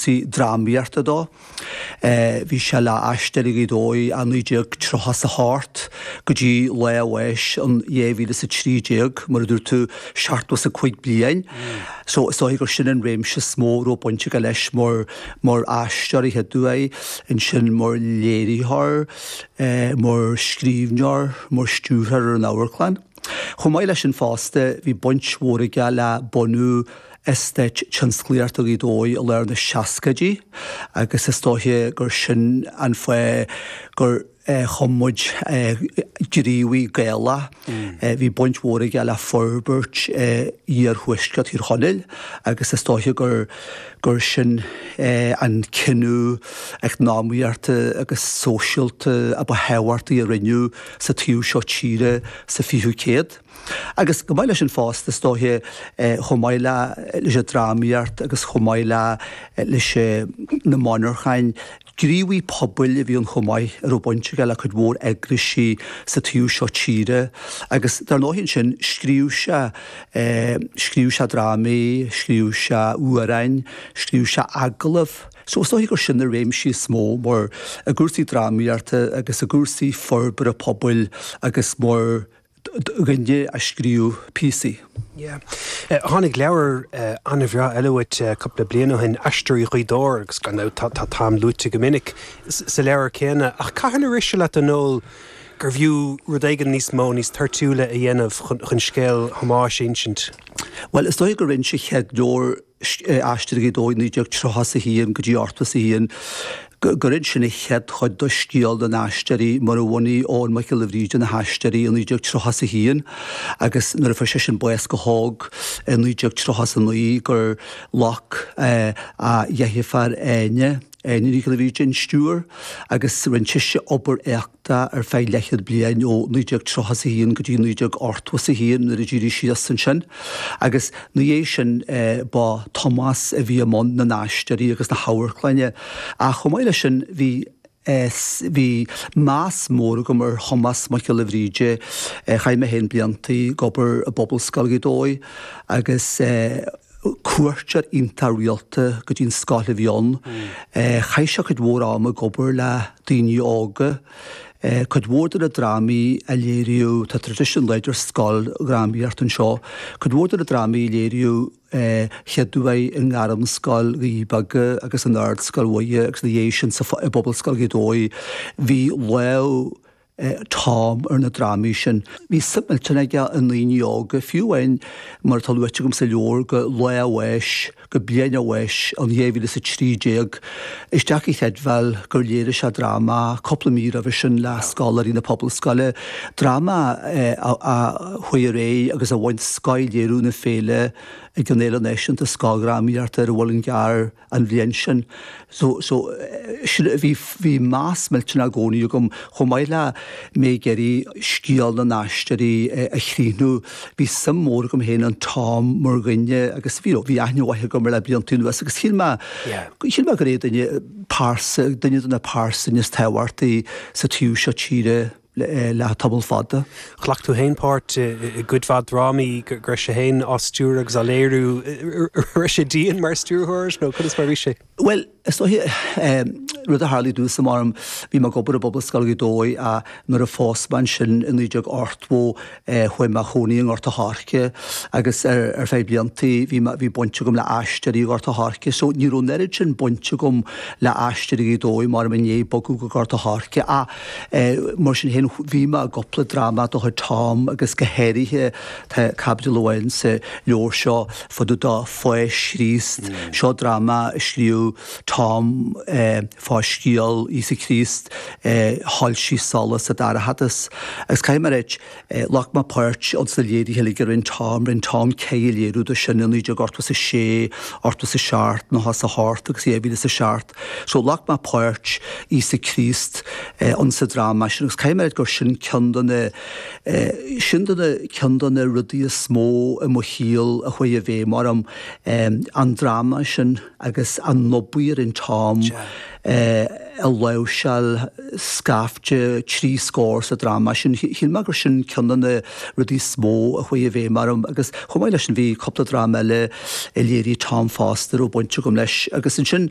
sí drámaíochta dó. Bhí sé le hAisteoirí Ghaoth Dobhair ó 1938 go dtí lá a bháis in 2013, mar a dúirt tú, seachtó is a cúig bliain. So is dóiche gur sin an réimse is mó a raibh baint aige leis mar, mar aisteoir, a chéaduair, ansin mar léiritheoir, mar scríbhneoir, mar stiúrthóir ar an amharclann. Chomh maith leis sin fosta, bhí baint mhór aige le bunú Eastát Tionsclaíochta Ghaoth Dobhair i lár na seascaidí agus is dóiche gur sin an fáth gur chum muid Gníomhaí Gaelach. Bhí baint mhór aige le forbairt iarthuaisceart Thír Chonaill agus is dóiche gur gur sin an cinneadh eacnamaíochta agus sóisialta a ba thábhachtaí a rinneadh sa taobh seo tíre sa 20ú céad. Agus chomh maith leis sin fosta, is dóiche, chomh maith le leis an drámaíocht agus chomh maith le leis na monarchain, gníomhaí pobail a bhí ann chomh maith a raibh baint aige le cuid mhór eagraisí sa taobh seo tíre. Agus dar ndóigh ansin, scríobh sé, scríobh sé drámaí, scríobh sé amhráin, scríobh sé agallamh. So is dóiche gur sin na réimsí is mó mar i gcúrsaí drámaíochta agus i gcúrsaí forbartha pobail agus mar dhuine a scríobh píosaí. Yeah. Tháinig leabhar an-bhreá eile uait cúpla bliain ó shin, Aisteoirí Ghaoth Dobhair, agus gan dabht tá Tom luaite go minic sa leabhar céanna. Ach cathain a rith sé leat, a Noel, gurbh fhiú rud éigin níos mó, níos toirtiúla a dhéanamh chun scéal Thomáis a insint? Bhuel, is dóigh gur ins an chéad leabhar. Aisteoirí Ghaoth Dobhair 1931 go dtí 81 gur inis sin an chéad chuid de scéal na n-aisteoirí mar a bhunaigh Eoghan Mac Giolla Bhríde na hAisteoirí i 1931 agus nuair a fuair seisean bás go hóg i 1939 gur ghlac a dheirféar Áine Nic Giolla Bhríde an stiúir agus rinn sise obair éachta ar feadh leathchéad bliain ó 1931 go dtí 1981 nuair a d'éirigh sí as ansin. Agus ina dhiaidh sin ba Tomás a bhí i mbun na n-aisteoirí agus na hamharclainne. Ach chomh maith leis sin bhí bhí meas mór agam ar Thomás Mac Giolla Bhríde. Chaith mé féin blianta ag obair i bPobalscoil Ghaoth Dobhair agus cuairteoir iontach rialta go dtí an scoil a bhí ann. Chaith sé cuid mhór ama ag obair le daoine óga. Cuid mhór de na drámaí a léiríodh, tá tradition láidir scoildrámaíocht anseo, cuid mhór de na drámaí a léiríodh a chéaduair i nGairmscoil Dhoirí Beaga agus in Ardscoil Mhuire agus ina dhiaidh sin sa i bPobalscoil Ghaoth Dobhair, bhí lámh Tom ar na drámaí sin. Bhí suim millteanach aige i ndaoine óga, fiú amháin, mar atá luaite agam sa leabhar, go lá a bháis, go bliain a bháis, an dhá mhíle is a trí déag. Is deacair a chreidbheáil gur léirigh sé dráma cúpla mí roimhe sin le scoláirí na Pobalscoile, dráma a chuaigh ar aghaidh agus a bhain scoth léiriú na féile ag an Fhéile Náisiúnta Scoildrámaíochta ar an Mhuileann gCearr. an bhliain sin. So, so, sin, bhí, bhí meas millteanach i gcónaí agam, chomh maith le mé ag iarraidh scéal na nAisteoirí a chríochnú, bhí suim mhór agam féin in Tom mar dhuine agus, you know, bhí aithne mhaith agam air le blianta anuas agus shíl mé, shíl mé gur é duine, pearsa, duine de na pearsana is tábhachtaí sa taobh seo tíre. le tamall fada. Ghlac tú fhéin páirt i gcuid mhaith drámaí go raibh sé fhéin á stiúradh agus á léiriú. An raibh sé dian mar stiúrthóir nó conas mar a bhí sé? Bhuel, is dóiche rud a tharla i dtús ama orm, bhí mé ag obair i bPobalscoil Ghaoth Dobhair ach nuair a phós mé ansin i naoi déag ochtó, Chuaigh mé ag cónaí i nGort a' Choirce agus ar feadh blianta bhí baint agam le Aisteoirí Ghort a' Choirce so ní raibh an oiread sin baint agam le Aisteoirí Ghaoth Dobhair mar i ndiaidh bogadh go Gort a' Choirce ach mar sin féin bhí mé i gcúpla dráma de chuid Tom agus go háirithe tá caibidil amháin sa leabhar seo fá dtaobh de Pháis Chríost, seo dráma a scríobh. Tom fá scéal Íosa Críost a shoilsigh solas sa dorchadas. Agus caithfidh mé a ráit, ghlac mé páirt ins na léirithe uilig a rinne Tom. Rinne Tom ceithre léiriú de sin, 19 ochtó is 6, ochtó is 7, nócha is 8 agus 2000 is 7. So ghlac mé páirt Íosa Críost ins an dráma sin agus caithfidh mé a ráit gur sin ceann de na sin de na ceann de na rudaí is mó i mo shaol a chuaigh i bhfeidhm orm, an dráma sin. agus an obair a rinne Tom ag láimhseáil scaifte, trí scór sa dráma sin. Shíl mé gur sin ceann de na rudaí is mó a chuaigh i bhfeidhm orm agus chomh maith leis sin bhí cúpla dráma eile a léirigh Tom fosta a raibh baint agam leis agus ansin,